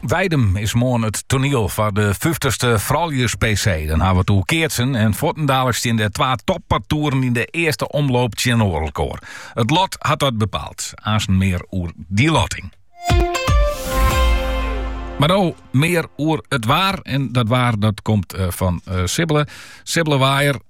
Weidum is moarn it toaniel foar de fyftigste Frouljus-PC. Dan hawwe we it oer keatsen en fuortendaliks steane de twa toppartoeren yn de earste omloop tsjinoer elkoar. It lot hat dat bepaald. Aansten mear oer dy lotting. Mar no mear oer it waar. En dat waar dat komt fan Sibbele. Sibbele Waaijer.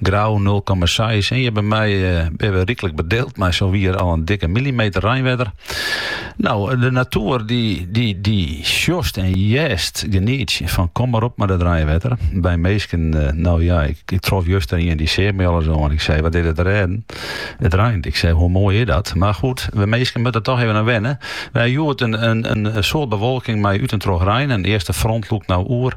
Grou nul komma seis. En hjir by my binne we ryklik bedeeld mei sa wier al in dikke millimeter reinwetter. No, de natuer dy, dy, dy sjochst en hearst genietsjen fan kom mar op mei dat reinwetter. By minsken, eh, no ja, ik, ik trof juster ien dy seach my al ris oan. Ik sei, wat is der te rêden? It reint. Ik sei, hoe moai is dat? Mar goed, wy minsken moatte der toch even oan wenne. We ha hjoed in, in, in soart bewolking mei út en troch rein. In earste front lûkt no oer.